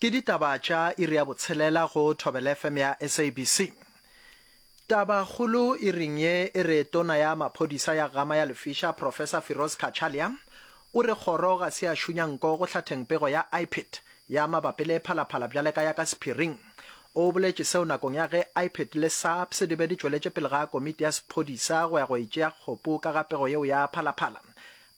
Ke ditaba tša iri ya botshelela go Thobela FM ya SABC. Taba kgolo iring ye e re tona ya maphodisa ya Gama ya Lefisha Professor Firoz Cachalia o re kgoro ga se ya šunya nko go hlatheng pego ya IPID ya mabapi le phalaphala bjale ka ya ka sephiring. O boletše seo nakong ya ge IPID le SAPS di be di tšweletše pele ga komiti ya sephodisa go ya go e tšea kgopu ka ga pego yeo ya phalaphala.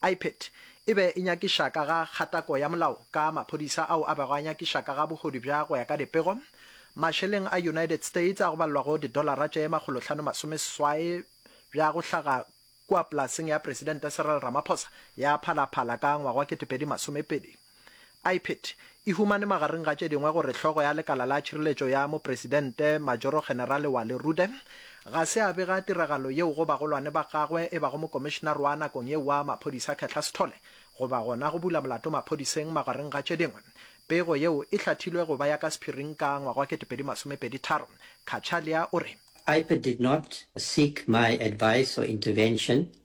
Ipet. E be e nyakiša ka ga kgatako ya molao ka maphodisa ao a bego a nyakiša ka ga bogodu bja go ya ka dipego. Mašeleng a United States a go balelwa go didolara tše makgolohlano masome seswai bja go hlaga kua polaseng ya Presidente Cyril Ramaphosa ya Phala Phala ka ngwaga wa ketepedi masomepedi. Ipid e humane magareng ga tše dingwe gore hlogo ya lekala la tšhireletšo ya mopresidente, Majoro-Generale Wally Rooden, ga se a bega tiragalo yeo go bagolwane ba gagwe e bago mokomišenare wa nakong yeo wa maphodisa Khetla Sithole goba gona go bula molato maphodiseng magareng ga tše dingwe. Pego yeo e hlathilwe go ba ya ka sephiring ka ngwaga wa 2023. Cachalia o re. Ipid did not seek my advice or intervention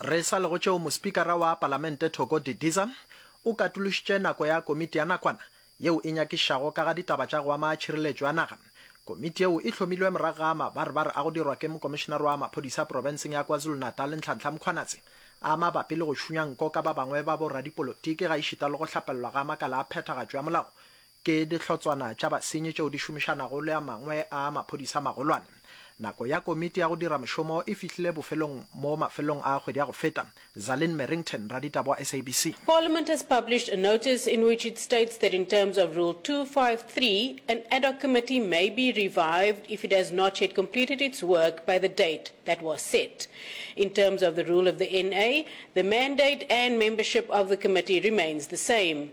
Re sa le go tšeo mospikara wa Palamente Thoko Didiza o katološitše nako ya komiti ya nakwana yeo e nyakišago ka ga ditaba tša go ama tšhireletšo ya naga. Komiti yeo e hlomilwe morago ga mabarbar a go dirwa ke mokomišenare wa maphodisa profenseng ya KwaZulu-Natal Nhlanhla Mkhwanazi a mabapi le go šunya nko ka ba bangwe ba boradipolotiki gaešita le go hlapelelwa ga makala a phethagatšo ya molao Ke dihlotswana tša basenyi tšeo di šomišanago le a mangwe a maphodisa a magolwane. Nako ya komiti ya go dira mošomo e fihlile bofelong mo mafelelong a kgwedi ya go feta. Zalin Merrington, raditaba wa SABC. Parliament has published a notice in which it states that in terms of Rule two five three, an ad hoc committee may be revived if it has not yet completed its work by the date that was set. In terms of the rule of the NA, the mandate and membership of the committee remains the same.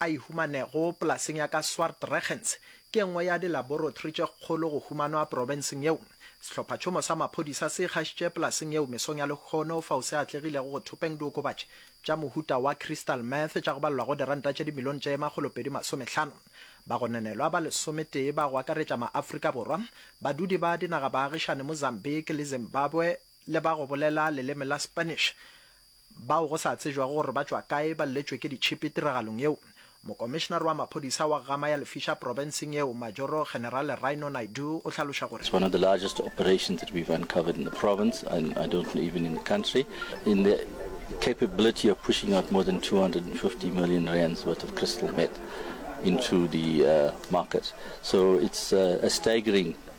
a e humanego polaseng ya ka Swartregens ke e nngwe ya dilaborotri tše kgolo go humanwa profenseng yeo. Sehlophatšhomo sa maphodisa se ikgašitše polaseng yeo mesong ya lehono fao se atlegilego go thopeng diokobatši tša mohuta wa crystal meth tša go balelwago diranta tše dimilione tše makgolo pedi masomehlano. Bagononelwa ba lesometee ba go akaretša ma-Afrika Borwa, badudi ba dinagabaagišane Mozambique le Zimbabwe le ba go bolela leleme la Spanish bao go sa tsejwago gore ba tšwa kae ba lletšwe ke ditšhipi tiragalong yeo. Mokomišenare wa maphodisa wa Gama ya Lefisha profenseng yeo, Majoro Generale Rhino Naidoo o hlaloša gore, It's one of the largest operations that we've uncovered in the province and I don't know even in the country in the capability of pushing out more than 250 million rands worth of crystal meth into the uh, market. So it's uh, a staggering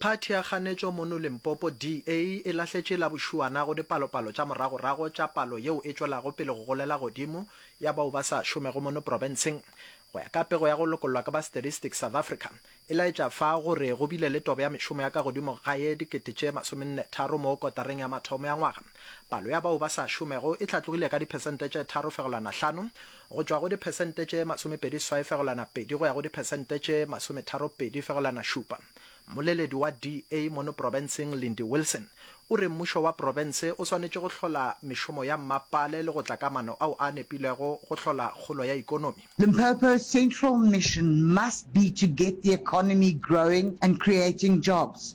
Phathi ya kganetšo mono Limpopo, DA, e lahletše la bošuana go dipalopalo tša moragorago tša palo yeo e tšwelago pele go golela godimo ya bao ba sa šomego mono profenseng, go ya ka pego ya go lokollwa ke ba Statistics South Africa, e laetša fa go re go bile le tobo ya mešomo ya ka godimo ga ye dikete tše masomenne tharo mo kotareng ya mathomo ya ngwaga. Palo ya bao ba sa šomego e hlatlogile ka diphesente tše tharo fegelwana hlano go tšwa go diphesente tše masomepedi swai fegelwana pedi go ya go diphesente tše masometaro pedi fegelwana šupa. Mmoleledi wa DA mono profenseng Lindy Wilson o re mmušo wa profense o swanetše go hlola mešomo ya mmapale le go tla ka mano ao a nepilego go hlola kgolo ya ikonomi. Limpopo's central mission must be to get the economy growing and creating jobs.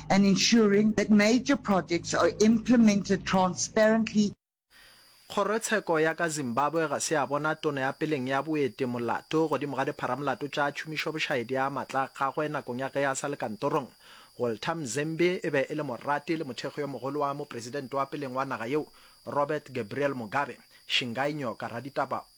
and ensuring that major projects are implemented transparently, Kgorotsheko ya ka Zimbabwe ga se ya bona Tona ya peleng ya Boete molato godimo ga dipharamolato tša tšhomišobošaedi ya matla a gagwe nakong ya ge a sa le kantorong. Walter Mzembi e be e le morati le mothekgi yo mogolo wa mopresidente wa peleng wa naga yeo, Robert Gabriel Mugabe. Shingai Nyoka, raditaba